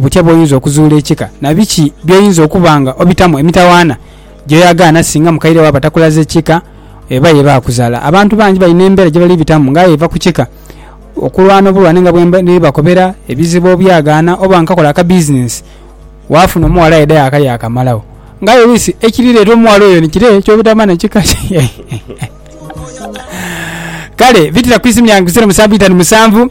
Butya bw'oyinza okuzuula ekika, na biki by'oyinza okuba nga obitamu? Emitawaana gy'oyagaana singa mukaire wo aba takulaze kika eba ye baakuzaala. Abantu bangi balina embeera gye bali bitamu ng'aye eva ku kika. Okulwana obulwane nga bwe ndi bakobera, ebizibu obyagaana, oba nkakola akabizinensi waafuna omuwala aidha yaakalya akamalagho. Ng'aye oluusi ekirireeta omuwala oyo ni kire ky'obutamanha kika kye. Kale, bitira ku isimu lyange ku zeero musanvu itanu musanvu.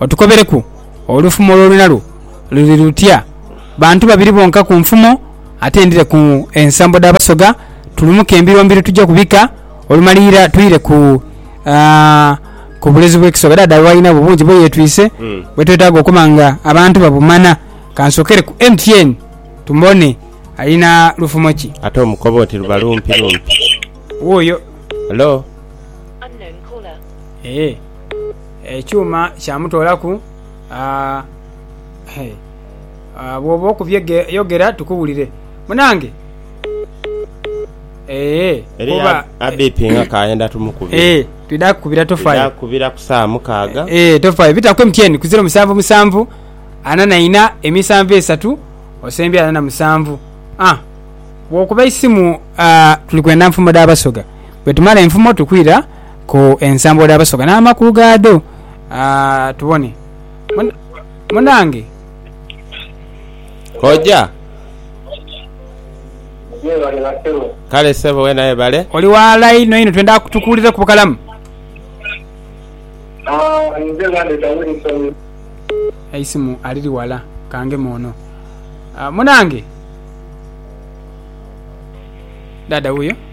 Otukobereku olufumo lw'olwina lwo luli lutya? Bantu babiri bonka ku nfumo ate ndhire ku ensambo dha Basoga tulumuke embiro mbiro tuje ku bika olumalira twire ku ku bulezi bw'ekisoga. Dhaadha we alina bwo bungi bwe yetwise bwe twetaaga okuba nga abantu babumana. Kansokere ku MTN tumone alina lufumo ki. Ate omukoba oti luba lumpi lumpi. Wuuyo. Hello. Eeh. Ekyuma kyamutoolaku aa eeh bwoba okubye yogera tukuwulire munange eeh. Eriyo abipinga kayenda tumukubire. Eeh twidha kukubira tofaire. Twidha kukubira ku sawa mukaaga. Eeh tofaire bita ku MTN ku ziro musanvu musanvu ana na ina emisanvu esatu osembye ana na musanvu aah bwokuba eisimu aah tuli kwenda nfumo dha basoga bwetumala enfumo tukwira. ku ensambo dha Basoga n'amakulu gaadho. Aa, tubone. Mun- Munange, Koja. Mwebale basebo. Kale sebo wena webale. oli ghala inho inho, twenda tukuwulireku bukalamu. Ah, nze bandeta Wilson. Eisimu aliri ghala, kangeme ono. Aa, munange. Dhaadha wuuyo.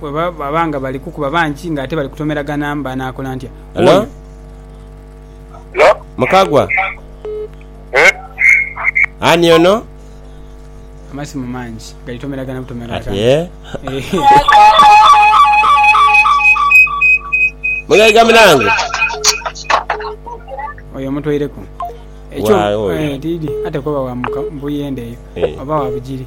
Bwe baba nga bali kukuba bangi ng'ate bali kutomeragana banaakola ntya? Hello? Oyo Hello? Mukagwa? Eh? Ani ono? amasimu mangi galitomeragana butomeragana. Ati eh? Eh, Mugaiga munange? oyo omutoireku. Ekyo Waawo oyo. eh, didi ate kuba wa muka- mbuyende eyo Eh. oba wa bugiri.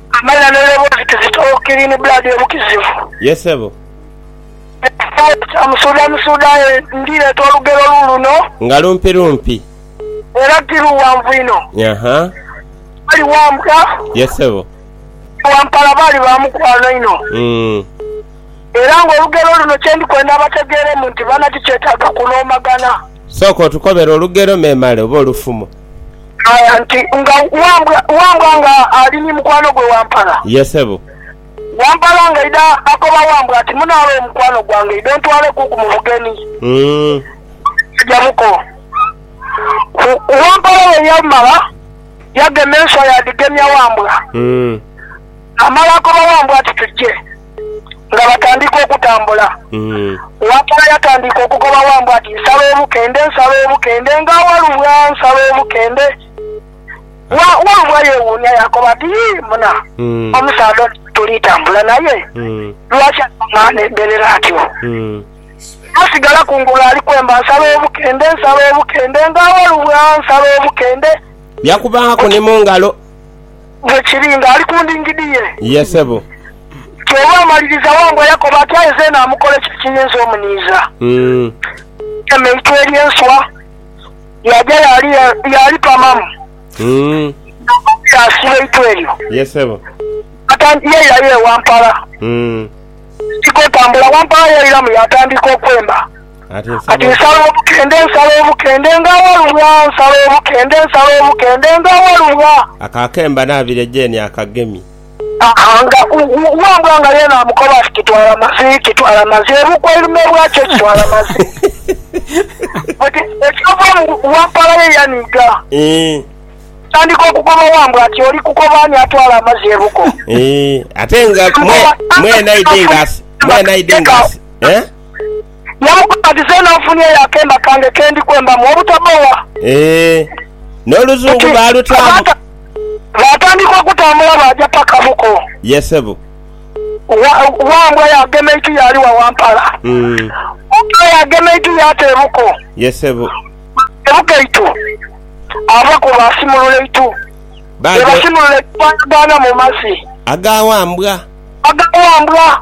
Amanya ne levels kizito clean blood ye mukizivu. Ye sebo. Ekitongole kya Musuuda Musuuda aye ndi leeta olugero lu luno. Nga lumpi lumpi. Era ti luwanvu inho. Yaha. Bali wambwa. Ye sebo. Ni wampala baali ba mukwano inho. Uhmm. Era nga olugero luno kye ndi kwenda bategeeremu nti bana ti kyetaaga kunoomagana. Sooka otukobere olugero memale oba olufumo. Ghaya nti, Nga Wambwa, Wambwa nga ali ni mukwano gwe Wampala? Ye sebo. Wampala nga aidha akoba Wambwa ati, Munaale oyo mukwano gwange, idho ntwaleku ku mu bugeni. Aja buko. Wampala bwe yamala, yagema enswa yaadhigemya Wambwa. Amala akoba Wambwa ati, Tuje. nga batandika okutambula. Wapala yatandika okugoba Wambwa ati, Nsala obukende, nsala obukende, nga Walubwa nsala obukende. Wa, Walubwa yeewuunia yaakoba ati, Yii, muna, omusaadha ono gwe tuli tambula naye, lwaki anuma n'embeerera atyo? Yasigala kungulu ali kwemba, Nsala obukende, nsala obukende, nga Walubwa nsala obukende. Yakubangaku ni mu ngalo. Bwe kiri nga ali ku ndingidi ye. Ye, sebo. Kyova amaliriza wa mbu Yakobo ati, Aye zeena amukola ki ekiyinza omuniiza? Eme eitwe ery'enswa yaaja yaali yaalipamamu, Yakobo yaasiba eitwe eryo. Ye, sebo. Yaatandiika yaira ye wampala. Yaatandika otambula wampala yairamu, yaatandiika okwemba. Kati nsala obukende, nsala obukende nga awalulwa, nsala obukende, nsala obukende nga awalulwa. Ako akemba naabire Jane akagemye. Haa nga Wambwa nga yeena amukoba ati kitwala mazi, kitwala mazi, ebuuka oilume bwakyo kitwala mazi. Oti ekyova mu Wampala ye yaniiga. Eeh. Atandika okukoba Wambwa ati oli kukoba ani atwala amazi ebuko? Eeh, ate nga mwe, mwena idi nga asi, mwena idi nga asi. Eh? Yamukoba, Dhi zeena ofunieyo akemba kange ke ndi kwembamu obutabowa. Eeh. N'oluzungu baalutaamu? Baatandika okutambula baaja paka buko. Ye ssebo. Wa, Wambwa yaagema eiti yaali wa Wampala. Wambwa yaagema eiti yaata e buko. Ye ssebo. E buko eitu. Ava ku baasimulula eitu. Bwe basimulula eitu baayagaana mu mazi. Aga Wambwa. Aga Wambwa.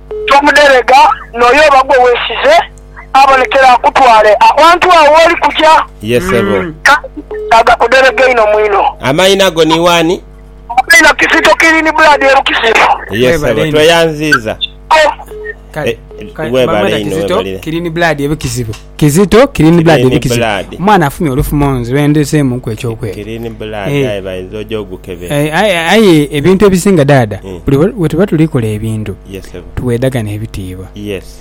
Tomudherega, n'oyo oba gwe weesize abonekere akutwale awantu agho w'oli kuja. Ye sebo. Kale agakudherega einho mu inho. Amaina go ni wani? Amaina Kizito Kilini Blood e Bukisifu. Ye sebo, tweyanziiza. Kale, Webale Bamaina inho, Kizito webalire. Kilini Blood e Bukisifu. Kizito clean blood ndi kizito omwana afunye olufumo nze lwendezeemu ku ekyokwega aye ebintu ebisinga daada mm. buli wetuba tulikola ebintu tuwedagana ebitiibwa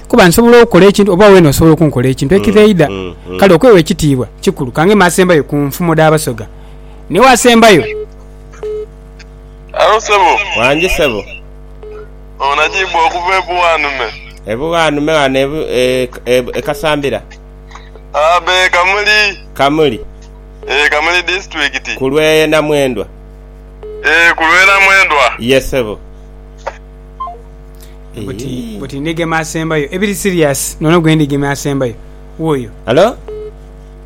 kuba nsobola okukola ekintu oba wena osobola okunkola ekintu mm, ekireida mm, kale okwewa ekitiibwa kikulu kange masembayo ku nfumo dabasoga naye wasembayo wangi sebo Onajimbwa okuva e Buwanume. E Buwanume ghano e Kasambira. Abe Kamuli. Kamuli. Ee Kamuli disitulikiti. Ku lwe Namwendwa. Ee ku lwe Namwendwa. Ye sebo. Buti buti ndigema asembayo ebiri serious nono gwe ndigema asembayo wuuyo. Hello.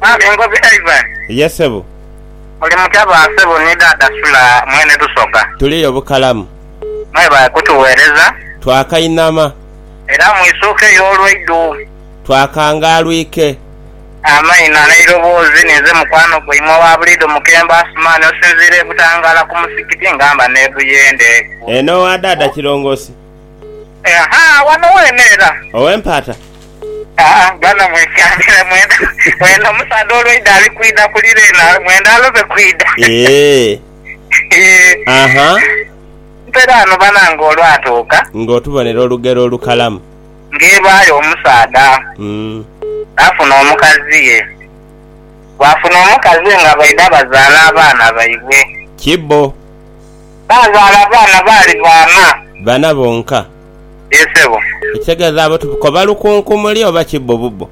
Mwami Ngozi Ivan. Ye sebo. Muli mutya ba sebo ni dada Sula mwene Tusoga. Tuliyo bukalamu. Mwebale kutugheereza. Twakainama. Era mwisuuke yo olweidhu. Twakangaalwike. Amaina n'eiroboozi ninze mukwano gwaimwe owa buliidho Mukembo Asuman osinziira e Butangaala ku musigiti nga mba n'e Buyende. Eno owa daada Kirongosi. Aha, wano weene era. Ow'empaata. Aa, bano mwekyamire mwena. Eno omusaadha olweidha ali kwidha kulira eno, mwena alobe kwidha. Eeh. Aha. Nte dh'ano bana ng'olwatuuka. Ng'otubonera olugero olukalamu. Ng'ebaayo omusaadha n'afuna omukaziye. Baafuna omukaziye nga baidha bazaala abaana baibwe. Kibbo. Baazaala abaana baali baana. Bana bonka. Yee sebo. Ekitegeeza abo tukoba lukunkumuli oba kibbo bubbo?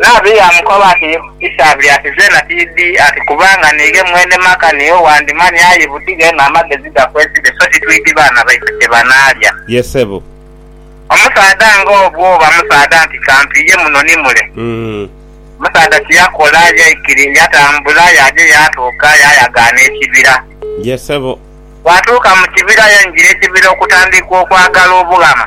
Nabbi yaamukoba ati, Isabel ati, Zeena tiidhi ati kubanga niighe mwene maka niiwe wandimanya, aye butighe eno amagezi gakwesibe, so titwidhi baana baife kye banaalya. Ye sebo. Omusaadha nga ogwo oba musaadha nti kampiiye muno ni mule. Omusaadha kye yakola yaikiri, yatambula yaaja yaatuuka yaayagaana ekibira. Ye sebo. Bw'atuuka mu kibira yaingira ekibira okutandiika okwagala obughama.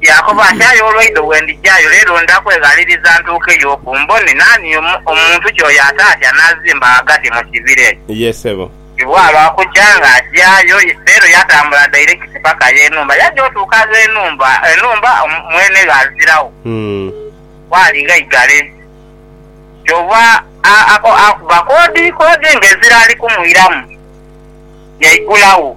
Yaakoba ati, Aye olwaidho bwe ndija yo, leero ndha kweghaliriza ntuukeyo oku mbone naani omuntu ki oyo ataatya anaazimba ghagati mu kibira ekyo. Ye, sebo. Ibwa lwa kukya nga aja yo, leero yatambula dairekiti paka y'enhumba. Yaja otuuka agh'enhumba, enhumba mwene gh'aziragho. Waali ghaigale. Kyova akuba koodi, koodi ng'ezira ali kumwiramu, yaigulagho.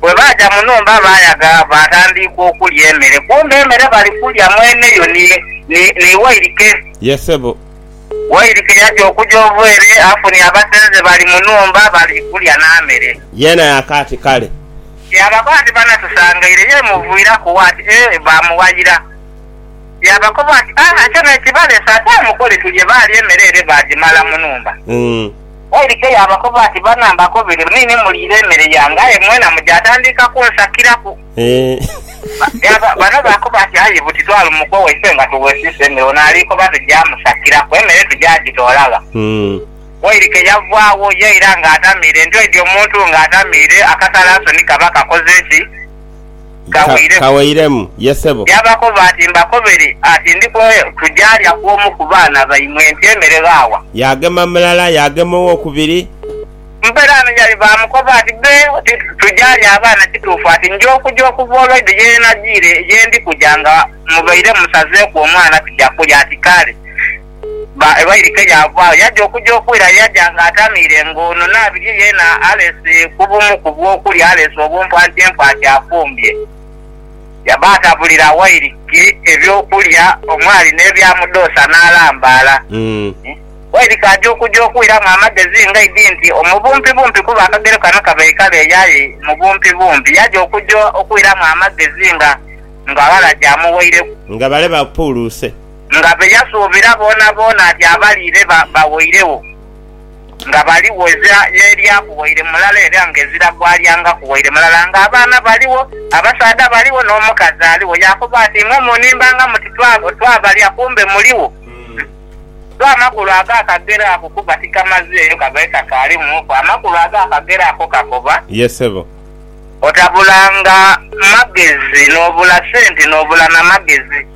Bwe baaja mu nhumba, baayaga baatandiika okulya emere. Kumbe emere bali kulya mwene yo ni, ni, ni wairike. Ye sebo. Wairike yaja okuja ova ere, afunye abasenze bali mu nhumba, bali kulya na mere. Yeena yaakaati, Kale. Yaabako ati, Banatusangaire. Yeemuviiraku wa ati, Ee, baamuwayira. Yaabakoba ati, Aa, ekyo n'ekibaleese, ate mukole tulye. Baalya emere ere baagimala mu nhumba. Waidhika yaabakoba ati, Bana mbakobere, ni ni muliire emere yange, aye mwena muja. Atandika kunsakiraku. Bano baakoba ati, Aye buti twali mu kwo waife nga tuwesiisa emere, ono ali koba tuja musakiraku, emere tuja gitoola gha? Waidhika yavaagho yaira ng'atamiire. Nti oidhi omuntu ng'atamiire, akasalansoni kaba kakoze ki? kaweireku, yaabakoba ati, Mbakobere ati, Ndi kumwe tujaalya ku omu ku baana baimwe enti emere ghaawa? Yaagema mulala, yaagema owokubiri. Muperaano yali baamukoba ati, Be oti tujaalya abaana kituufu? Ati, Nja okuja okuva olweidho ye najiire, ye ndi kuja nga mubaire musazeeku omwana tuja kulya. Ati, Kale. Ba e Wairika yaavaagho yaja okuja okwira. Yaja nga atamiire nga ono Nabirye yeena alese ku bumu ku bwokulya, alese obumpu anti empaati afumbye. Yaba atabulira Wairika ebyokulya omwali n'ebyamudhoosa n'alambaala. Wairika aja okuja okwiramu amagezi nga idi nti omu bumpi bumpi kuba akagero kano kabaikala eyo aye mu bumpi bumpi. Yaja okuja okwiramu amagezi nga ng'aghala gy'amuweireku. Nga bale bapuuluuse. Nga be yasuubira boonaboona ati abaliire bawoiregho nga baligho, ezira n'erya ku waire mulala era nga ezira gw'alyanga ku waire mulala, nga abaana baligho, abasaadha baligho, n'omukazi aligho. Yaakoba ati, Imwe munimbanga muti, Twabalya, kumbe muligho. Sso amakulu ag'akagero ako kuba tikamazeeyo kabaire kakaalimuku. Amakulu ag'akagero ako kakoba. Ye ssebo. Otabulanga magezi, n'obula sente, n'obula na magezi.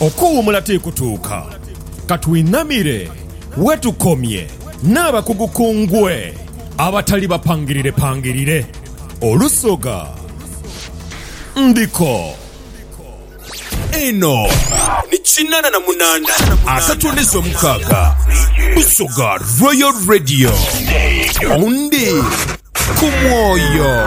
Okuwuumula ti kutuuka. Ka twinamire we tukomye n'abakugu ku ngwe abatali bapangirirepangirire. Olusoga ndiko. Eno ni kinana na munana asatu n'ezo mukaaga Busoga Royal Radio. Ondi ku mwoyo.